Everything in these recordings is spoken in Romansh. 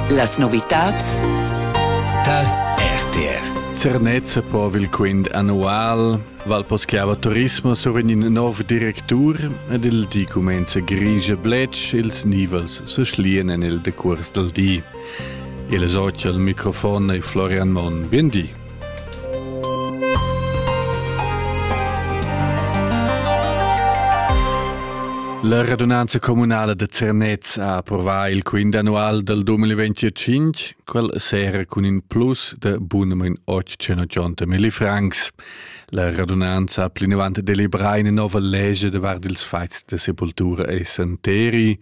Las novitads tar RTR. Zernezza po il quint annual Val Poschiava Turismo soven in nov directur ed il di comenza grigia bletsch ils nivels se schlien en il decurs del di. Il socia al microfon e Florian Mon. Bien di. La radunanza communala da Zernez ha approvà il quint annual dal 2025, quel sera cun in plus da bunamain 880 milli francs. La radunanza ha plinavant deliberà ina nova legge davart ils fats da sepultura e santeri,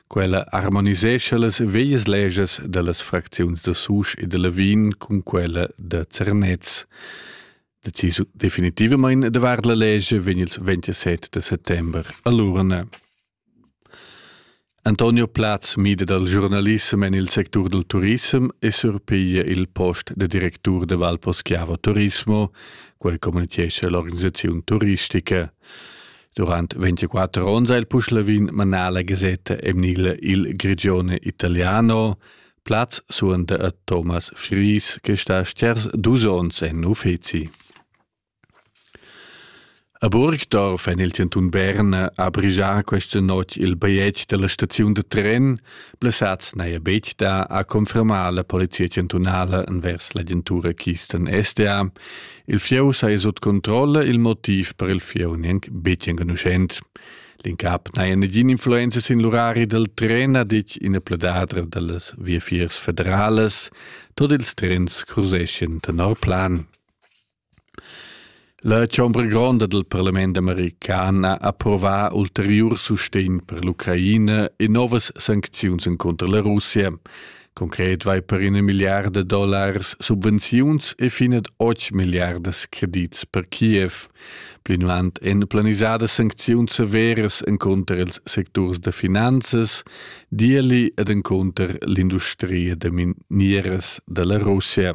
Quella harmonisescha las veias legas dellas fracziuns da Susch e de Lavin cun quella da Zernez. Decisu definitivamain davart la legge vegn il 27 de settembre a l'urna. Antonio Platz mida dal giornalissem en il sectur del turism e surpiglia il post de directur de Valposchiavo Turismo, quel communichesce l'organisazione turistica. Durant 24 onns ha il Puschlavin manà la gasetta emnila Il Grigione Italiano, plaz suenter a Thomas Fries, che sta sters dus onns en uffizi. A Burgdorf en il cantun Berna ha brigià questa notg il bigliet della staziun de tren, blessats neia betg da a confermar la polizia cantunala envers l'agentura Kisten SDA, Il fieu sa ei sut controlla il motiv per il fieu gnanc betg enconuschent. L'incap n'ha negin influenza sin l'urari dal tren, ha ditg ina pledadra dallas viafiers federales. Tot ils trens cruzeschien tenor plan. La chombra gronda del parlament american ha approva ulteriur sustegn per l'Ucraina e novas sancziuns contro la Russia. Concret vai per ina milliarda dollars subvenziuns e finet 8 milliardas credits per Kiev. Plinavant èn planisadas sancziuns severas encunter ils secturs da finanzas, dierli ed encunter l'industria da minieras da la Russia.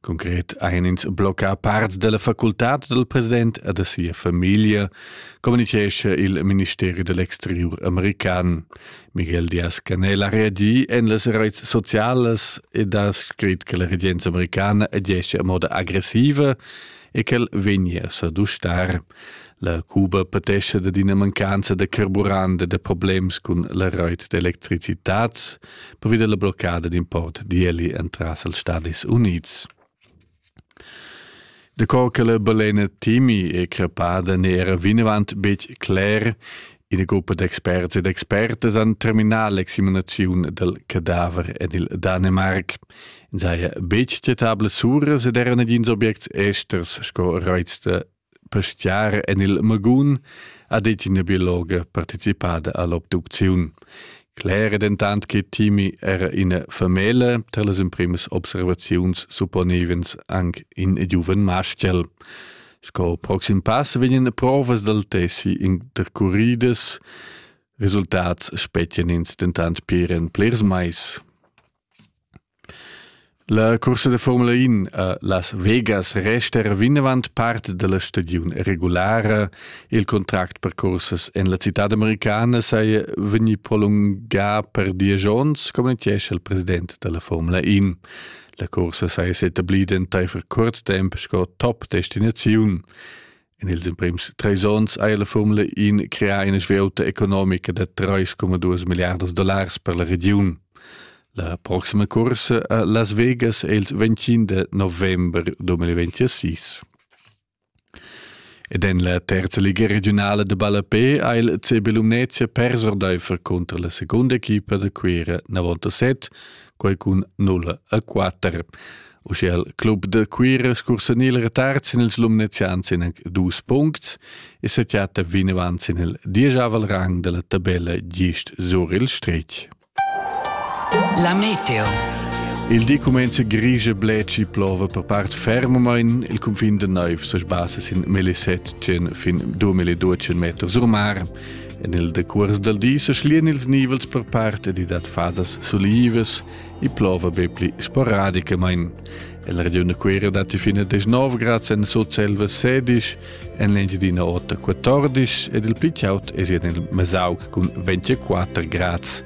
Concret ein ins bloccà part dalla facultad dal president e da sia famiglia, communicescha il ministeri dell'exteriur american. Miguel Diaz-Canel ha reagi en las reits socialas ed ha scrit che la regenza americana agisce a moda aggressiva e ch'el vegnia a dustar. La Cuba patescha da d'ina mancanza da carburant e da problems cun la reit d'electricitad pervi dalla bloccada d'import d'ieli entras els Stadis Unids. De cor che le balena timi e crepada ne era vinavant betg cler Ina gruppa d'experts ed expertas han terminà l'examinaziun dal cadaver en il Danemark. In saja betg citables uras ed era nagins objects esters sco reiz da pastiar en il Magun, ha detg ina biologa participada a l'obducziun. Cler è dentant che Timi era ina famiglia, tar las emprimas observaziuns supponevans anc in giuven maschel. Sco proxim pass vegnan provas dal tessi intercuridas. Resultats spetgan ins dentant pir en plirs mais. La cursa da Formula 1 a Las Vegas resta vinavant part da la stagiun regulara. Il contract per cursas en la citad americana saja vegnì prolungà per diesch onns, communitgescha il president da la Formula 1. La cursa saja s'etablida entaifer curt temp sco top destinaziun. In ils emprims treis onns ha la Formula 1 creà ina svieuta economica da 3,2 milliardas dollars per la regiun. La proxima cursa a Las Vegas è il 25 november 2026. Ed en la terza liga regiunala da ballapè ha il CB Lumnezia pers ordaifer cunter la segunda equipa da Cuira 97, quai cun 0 a 4. Uschia il club da Cuira scursanil retard sin ils Lumnezians in anc dus puncts e sa chatta vinavant sin il diesavel rang della tabella gist sur il stretg. La meteo. Il di cumenza grigia bleci plova per part fermamain. Il cunfin de naiv se sbassa sin 1700 fin 2200 meters sur mar. En il decurs del di se schlien ils nivels per part ed i dat fasas sulivas e plova be pli sporadicamain. El regione Querio dat fine 19 grad sen sut selva 16 en l'Engiadina Ota 14 ed il pli chaut è en il Mesauc cun 24 grads.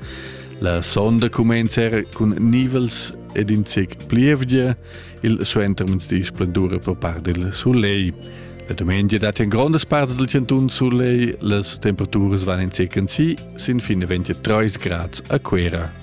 La sonda cumenza era cun nivels ed in zec plievgia, il suentermezdi splendura per part del soleil. La domenica dat in grondas parts del cantun soleil, las temperaturas van in zec en si, sin fine 23 grads a Cuera.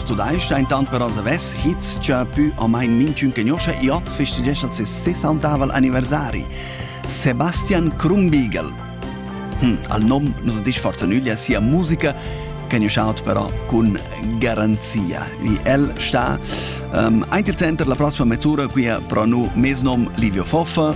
Studeisch intant però savess Hitz già pü o main minchün che noscha e hoz festegescha ses 60 anniversari. Sebastian Krumbigel. Hm, al nom nos disch forza nüglia sia musica che io shout però con garanzia. Wie el sta um, ehm, ein il center la prossima mezz'ora qui a pro nu mes nom Livio Foffa